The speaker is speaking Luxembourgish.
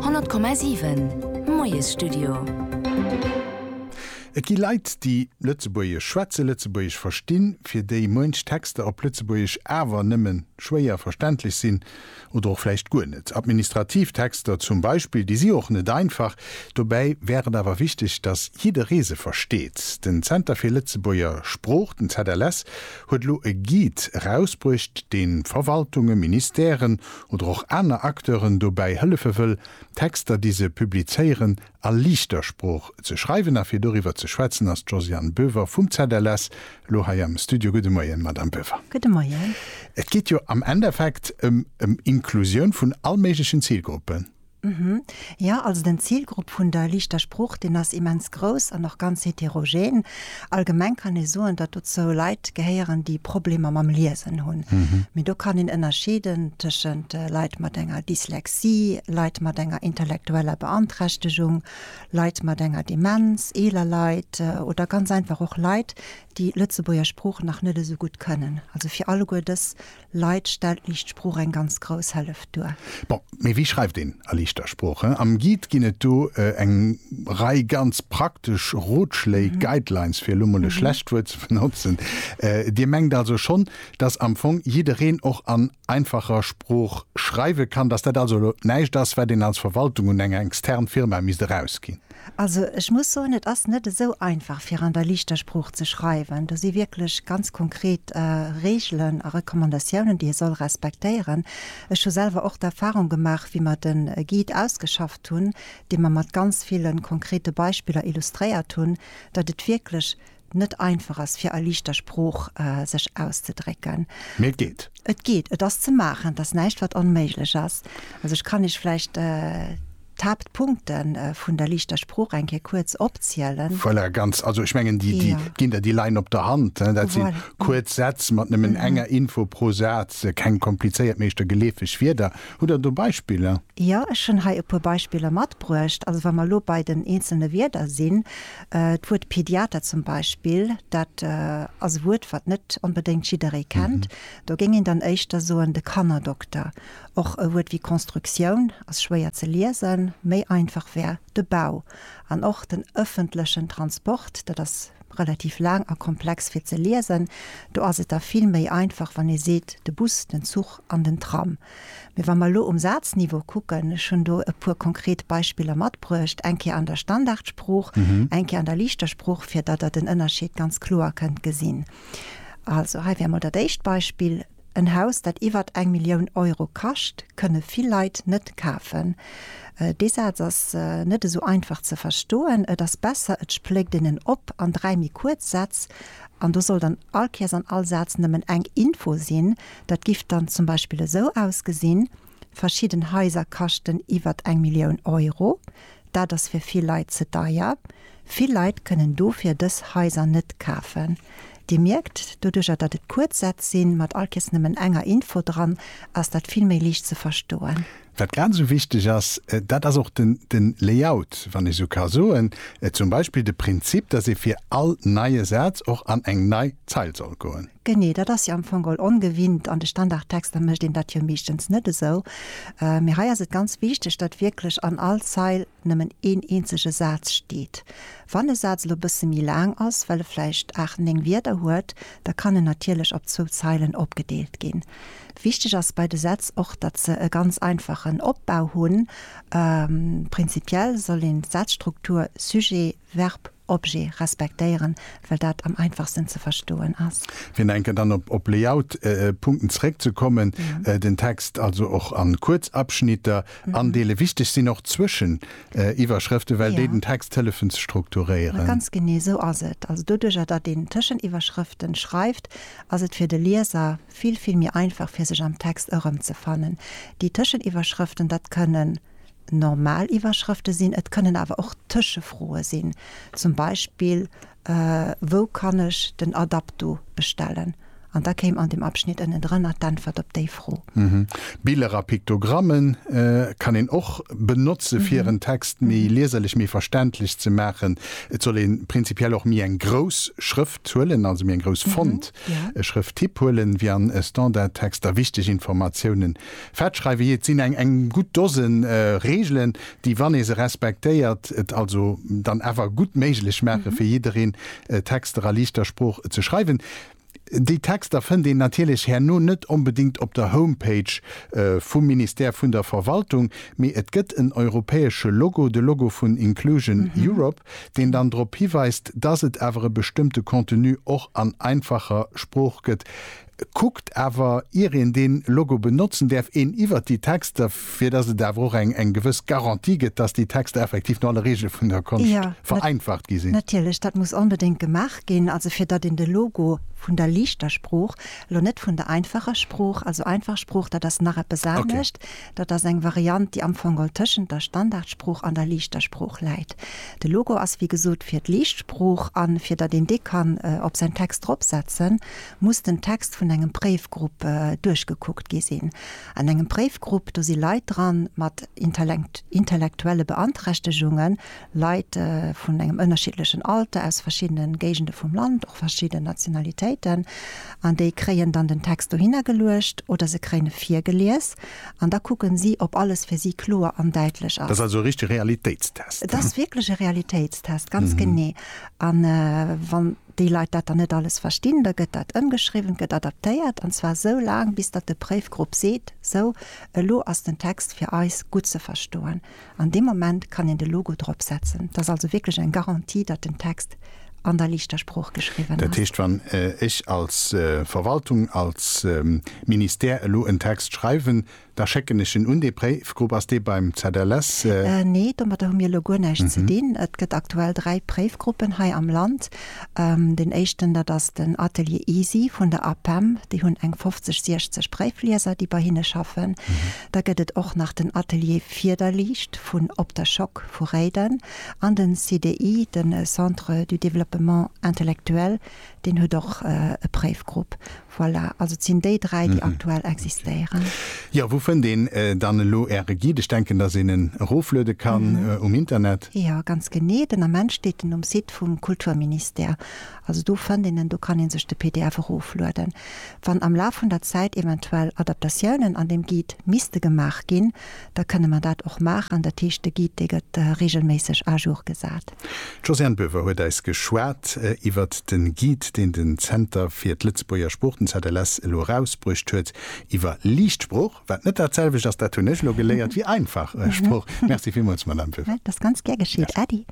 100,7 Moiesstudio. Et gi Leit, déi Lëtzebuergesch schwätzen, Lëtzebuergesch verstinn, fir déi muench Texter op Lëtzebuergesch awer nëmme schwéier verständlech sinn oder och vläicht guer net. Administrativ Texter zum Beispill, déi si och net einfach. Dobäi wär et awer wichteg, datt jidderee se versteet. Den Zenter fir Lëtzebuerger Sprooch, den ZLS, huet elo e Guide erausbruecht, dee Verwaltunge, Ministèren oder och aner Acteuren dobäi hëllefe wëll, d'Texter, déi se publizéieren, a liichter Sprooch ze schreiwen. A fir doriwwer ze schwätzen ass d'Josiane Boever vum ZLS elo hei am Studio. Gudde Moien, Madamm Boever. Gudde Moien. Et geet jo am Endeffekt ëm Inklusioun vun allméiglechen Zilgruppen. Mhm. Jo, also den Zilgrupp vun der liichter Sprooch, deen ass immens grouss an och ganz heterogen. Allgemeng kann ee soen, datt dozou Leit gehéieren, déi Problemer mam Liesen hunn. Mee do kann een ënnerscheeden tëschent Leit mat enger Dyslexie, Leit mat enger intellektueller Beanträchtegung, Leit mat enger Demenz, eeler Leit oder ganz einfach och Leit, déi d'Lëtzebuerger Sprooch nach net esou gutt kënnen. Also fir alleguer dës. Leit stellt liicht Sprooch eng ganz grouss Helleft duer. Bon, mee wéi schreift een a liichter Sprooch? Hm, am Guide ginn et do eng Rei ganz praktesch Rotschléi, Guidelines, fir elo mol e schlecht Wuert ze benotzen. Dir mengt also schonn, dass am Fong jiddereen och an einfacher Sprooch schreiwe kann, dass dat also elo näischt ass, wat een als Verwaltung un eng extern Firma misst erausginn? Also ech muss soen, et ass net esou einfach fir an der liichter Sprooch ze schreiwen. Do si wierklech ganz konkret Reegelen a Recommandatiounen, déi ee soll respektéieren. Ech hu selwer och d'Erfahrung gemaach, wéi mer de Guide ausgeschafft hunn, dee mer mat ganz ville konkrete Beispiller illustréiert hunn, datt et wierklech net einfach ass fir a liichter Sprooch sech auszedrécken. Mee et geet. Et geet, et ass ze maachen, et ass näischt wat onméiglech ass. Also ech kann Iech vläicht d'Haaptpunkte vun der liichter Sprooch eng Kéier kuerz opzielen. Voilà, ganz, also ech mengen déi ginn der déi leien op der Hand. Dat si kuerz Sätz mat nëmmen enger Info pro Saz, keng komplizéiert, meeschter geleefeg Wierder. Hutt Der do Beispiller? Jo, ech hunn hei e puer Beispiller matbruecht. Also wa mer elo bei den eenzelne Wierder sinn, D'Wuert Pediater zum Beispill, dat ass e Wuert, wat net onbedéngt jidderee kennt. Do géing een dann éischter soen de Kannerdokter. Och e Wuert wéi Constructioun ass schwéier ze liesen. Méi einfach wär de Bau. An och den ëffentlechen Transport, dat ass relativ laang a komplex fir ze liesen. Do ass et da vill méi einfach, wann ee seet de Bus, den Zuch an den Tram. Mee wa mer elo um Sazniveau kucken, ech hunn do e puer konkret Beispiller matbruecht, eng Kéier an der Standardsprooch, eng Kéier an der liichter Sprooch, fir datt Der den Ënnerscheed ganz kloer kënnt gesinn. Also hei wär emol dat éischt Beispill, En Haus, dat iwwer eng Millioun Euro kascht, kënne vill Leit net kafen. Dee Saz ass net esou einfach ze verstoen. Et ass besser, et spléckt een en op an dräi méi kuerz Sätz, an do soll dann all Kéiers an all Saz nëmmen eng Info sinn, Dat giff dann zum Beispill esou ausgesinn, Verschidden Haiser kaschten iwwert eng Millioun Euro. Dat ass fir vill Leit ze deier. Vill Leit kënnen dofir dës Haiser net kafen. Dir mierkt, doduercher datt et kuerz Sätz sinn, mat all Kees nëmmen enger Info dran, ass dat vill méi liicht ze verstoen. Wat grad esou wichteg ass, dat ass och den Layout, wann ech esou ka soen, zum Beispill de Prinzip, datt ee fir all neie Saz och an eng nei Zeil soll goen. Genee, dat ass jo am Fong geholl ongewinnt. An de Standardtexter mécht een dat jo meeschtens net esou. Mee hei ass et ganz wichteg, datt wierklech an all Zeil nëmmen een eenzege Saz steet. Wann e Saz elo e bësse méi laang ass, well e vläicht aacht, néng Wierder huet, da kann en natierlech op zwou Zeilen opgedeelt ginn. Wichteg ass bei de Sätz och, datt se e ganz einfachen Opbau hunn. Prinzipiell soll een d'Sazstruktur Sujet, Verb, Objet respektéieren, well dat am einfachsten ze verstoen ass. Fir nach eng Kéier dann op Layout-Punkten zeréckzekommen, den Text also och a kuerz Abschnitter andeelen. Wichteg sinn och Zwëscheniwwerschrëften, well déi den Text hëllefen ze strukturéieren. Ganz genee esou ass et. Also doduerjer, datt een Tëscheniwwerschrëften schreift, ass et fir de Lieser vill, vill méi einfach, fir sech am Text erëmzefannen. Déi Tëscheniwwerschrëften, dat kënnen normal Iwwerschrëfte sinn, et kënnen awer och Tëschefroe sinn, zum Beispill, Wou kann ech den Adapto bestellen? An da kéim an dem Abschnitt ënnendrënner d'Äntwert op déi Fro. Biller a Piktogramme kann een och benotze fir en Text méi lieserlech, méi verständlech ze maachen. Et soll ee prinzipiell och méi eng grouss Schrëft huelen, also méi eng grouss Font-Schrëfttyp huelen, wéi an Standardtexter. Wichteg Informatiounen Fett schreiwen, jee, et sinn eng eng gutt Dosen Reegelen, déi, wann ee se respektéiert, et also dann awer gutt méiglech maachen, fir jiddereen Texter a liichter Sprooch ze schreiwen. Déi Texter fënnt een natierlech herno net onbedéngt op der Homepage vum Ministère vun der Verwaltung, mee et gëtt en europäesche Logo, de Logo vun Inclusion Europe, deen dann drop hiweist, dass et awer e bestëmmte Contenu och an einfacher Sprooch gëtt. Kuckt awer, ier een dee Logo benotzen däerf, een iwwert déi Texter, fir datt et awer och eng gewëss Garantie gëtt, datt déi Texter effektiv no alle Reegele vun der Konscht vereinfacht gi sinn. Natierlech, dat muss onbedéngt gemaach ginn, also fir datt een de Logo vun der liichter Sprooch, elo net vun der einfacher Sprooch, also einfach Sprooch, dat ass nach eppes anescht, dat ass eng Variant, déi amfongol tëschent der Standardsprooch an der liichter Sprooch läit. De Logo ass, wéi gesot, fir d'liicht Sprooch a fir datt een dee kann op säin Text dropsetzen, muss den Text vun engem Préifgrupp duerchgekuckt gi sinn. An engem Préifgrupp, do si Leit dran mat intellektuelle Beanträchtegungen, Leit vun engem ënnerschiddlechen Alter, aus verschiddene Géigende vum Land, och verschidden Nationalitéiten. An déi kréien dann den Text dohinner geluecht oder se kréien e virgelies an da kucke si, ob alles fir si kloer an däitlech ass. Dat ass also e richtege Realitéitstest? Et ass wierklech e Realitéitstest, ganz genee. An wann. déi Leit dat dann net alles verstinn, da gëtt dat ëmgeschriwwen, gëtt adaptéiert, an zwar esou laang, bis datt de Préifgrupp seet, Sou, elo ass den Text fir eis gutt ze verstoen. An deem Moment kann een de Logo drop setzen. Dat ass also wierklech eng Garantie, datt den Text an der liichter Sprooch geschriwwen ass. Dat heescht, wann ech als Verwaltung, als Ministère elo en Text schreiwen, Da schécken ech en un dee Préifgrupp. Ass dee beim ZLS? Nee, domadder hu mir elo guer näischt ze dinn. Et gëtt aktuell dräi Préifgruppen hei am Land. Deen éischten, dat ass den Atelier Easy vun der APEM. Déi hunn eng 50, 60 Préiflieser, déi bei hinne schaffen. Da gëtt et och nach den Atelier Fiederliicht vun Op der Schock vu Réiden. An den CDI, den Centre du développement intellectuel, deen huet och e Préifgrupp. Voilà, also et sinn déi dräi, déi aktuell existéieren. Jo, wou fënnt een dann elo Äre Guide? Ech denken, datt een en erofluede kann um Internet. Jo, ganz genee. Den Ament steet en um Site vum Kulturministère. Also do fënnt een en, do kann ee sech de pdf eroflueden. Wann am Laf vun der Zäit eventuell Adaptatiounen an deem Guide misste gemaach ginn, da kënne mer dat och maachen. Dat heescht, de Guide, dee gëtt reegelméisseg à jour gesat. D'Josiane Böver huet eis geschwat iwwert de Guide, deen den Zenter fir d'Lëtzebuerger Sprooch, den ZLS, elo erausbruecht huet iwwer liicht Sprooch, wat net datselwecht ass, dat hunn ech elo geléiert, wéi einfach Sprooch. Merci villmools, Madamm Böver. Dat ass ganz gär geschitt. Äddi.